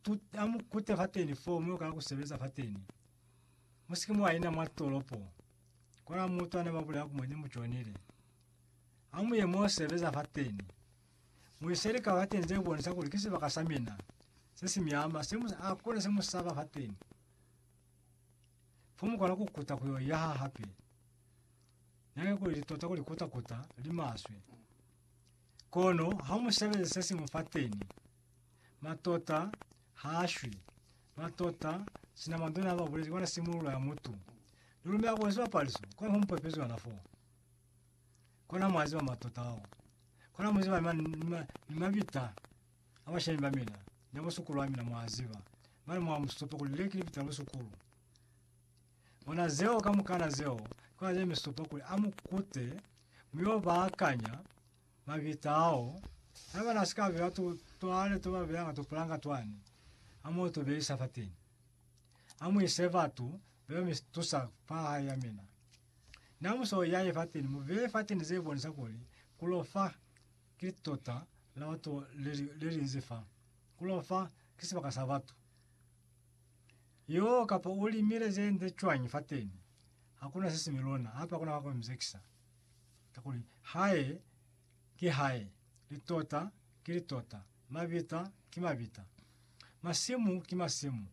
Tu amu kute fateni foo mwe kala kusebeza fateni. Musiki mwa ina mwa tolopo. Kona mutu ane mabulela ku mwenye mujonile. Amu ye mwe sebeza fateni. Muiseli ka fateni ze bonisa kuli ki sibaka sa mina. Se si miama, se mu a kona se musaba fateni. Fo mukona ku kuta kuyo yaha hape. Nake kuli li tota kuli kuta kuta, li maswe. Kono ha musebeze se simu fateni. Matota ha a shwi. Matota, sina mandone a ba bulezi kwa na simululo ya mutu. Ni lumela kuli sibapaliso kona ho mupepezi yona fo. Kona mwa ziba matota ao. Kona mu ziba ni, ma, ni, ma, ni mabita a bashemi ba mina, ni a busukulu ba mina, mwa ziba. Mane mwa musupo kuli le ki libita la busukulu. Bona zeo kamukana zeo, ki kona ze mi supa kuli a mu kute, mu yo ba akanya, Mabita ao, na bana si ka beya tu, twale tu ba beya nga tupulanga twani, a mo tu beisa fateni. A mu ise batu beba mi tusa fa hae ya mina. Na mu so yaye fateni, mu beye fateni ze bonisa kuli ku lo fa ki litota la batu le li, le li nzi fa. Ku lo fa ki sibaka sa batu. Yoo, kapa u limile ze nde cwañi fateni, ha ku na se si mi lona, hape ha ku na wa ku mi zekisa. Kakuli Hae ki Hae, litota ki litota, mabita ki mabita, masimu ki masimu.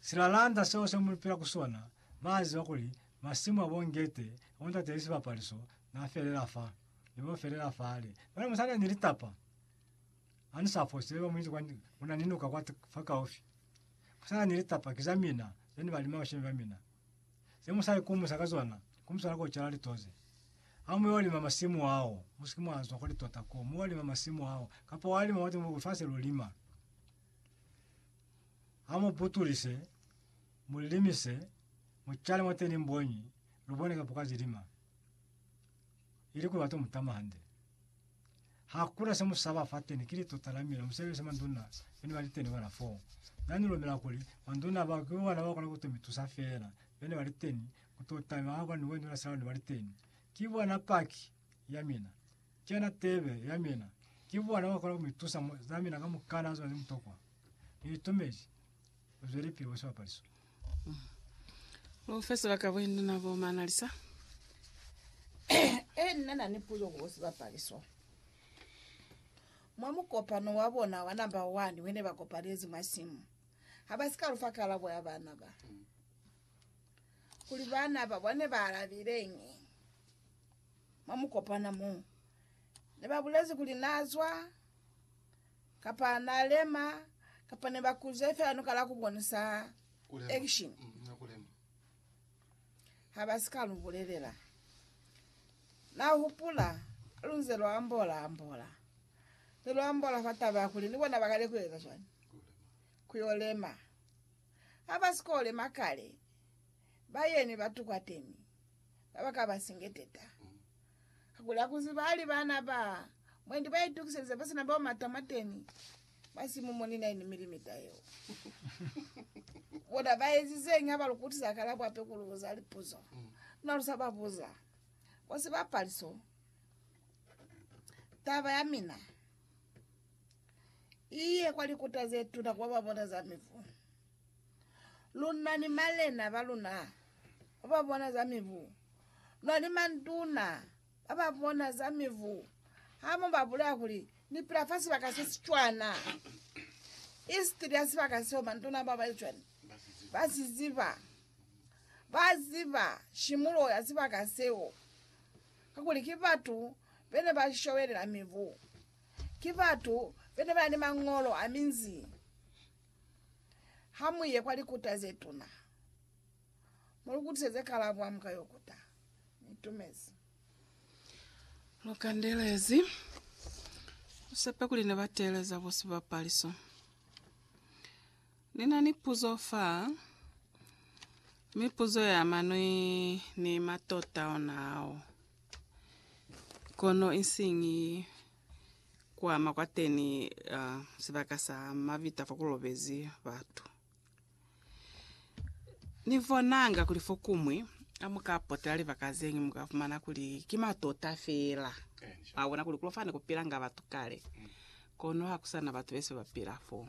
Silalanda seo se mu pila ku sona, ba ziba kuli masimu a bo Ngete, a bo Ntate ni sibapaliso, na felela fa. Ni bo felela fale. Mane mu sa na ni litapa, ha ni sa fose, ba mu iti kwa, ku na ni nuka kwa, fa kaufi. Mu sa na ni litapa, ki za mina, ze ni balima bashemi ba mina. Ze mu sa ikumusa ka zona, ku mu swana ku cala litoze. Ha mu yo lima masimu ao, mu si ke mwa zwa kwa litota koo, mu yo lima masimu ao, kapa wa lima mwa lifasi lu lima. Ha mu butulise, mu limise, mu cale mwateni mboñi, lu bone kapo ka zilima. Ili kuli wa to mu tama hande. Hakuna semusaba fateni kili tota lamina musebelisa manduna bene bali teni bona foo. Nani lumela kuli manduna bao ki bona bakona kuto mitusa feela bene bali teni kutota mi haba ni wenula sela ne bali teni. Ki bona paki yamina. Kena tebe yamina. Ki bona bakona kumitusa zamina kamukana zona zemutokwa. Ni itumezi. Zwelipili ku sibapaliso. Profesa Bakabwindu na bo Manalisa. Ee, nna na ni puzo ku sibapaliso. Mwa mukopano wa bona wa namba 1 wene ba kopalezi mwa simu, ha ba si ka lu fa kalabo ya bana ba, kuli bana ba bone ba alabileñi. Mwa mukopano mo, ne ba bulezi kuli na zwa. Kapa na lema, kapa ne ba kuze fela nuka la ku bonisa action mm, ha ba si ka lu bulelela. Na hupula lu nze lu ambola ambola, ne lu ambola fa taba ya kuli ni bona ba kale ku eza cwani, ku yo lema. Ha ba si ko lema kale, ba yeni ba tukwateni? ba ba ka ba singeteta. Kakuli ha ku ziba hali baana ba mwendi ba itukiselize ba si na bao mata mwateni, ba si mu moni na ini milimita yeo. Bona ba ezizeñi ha ba lu kutisa kalabo hape ku lu buza lipuzo luna lu sa ba buza? Bo si ba paliso, taba ya mina i ye kwa likuta ze tuna ku ba ba bona za mivu. Luna ni malena ba luna ba ba bona za mibu, luna ni manduna ba ba bona za mibu, ha mu ba bulela kuli ni pila fa sibaka se si cwana, isitili ya sibaka seo manduna ba ba cwana ba si ziba, ba ziba shimulo ya sibaka seo, kakuli ki batu bene ba shobelela mibu, ki batu bene ba ni mangolo a minzi. Ha mu ye kwa likuta ze tuna, mu lu kutiseze kalabo ha mu ka yo kuta. Ni itumezi. Lu kandelezi. Lu sepe kuli ne ba teeleza bo sibapaliso. Ni na ni puzo fa, mi puzo ya ama ni, ni matota ona ao. Kono isiñi kuama kwateni sibaka sa mavita fakulobezi batu. Nibonanga kuli fokumwi hamuka potela libaka zeñwi muka fumana kuli ki matota feela. Mwabona kuli kulofane kupilanga batu kale, kono hakusana batu bese bapila foo.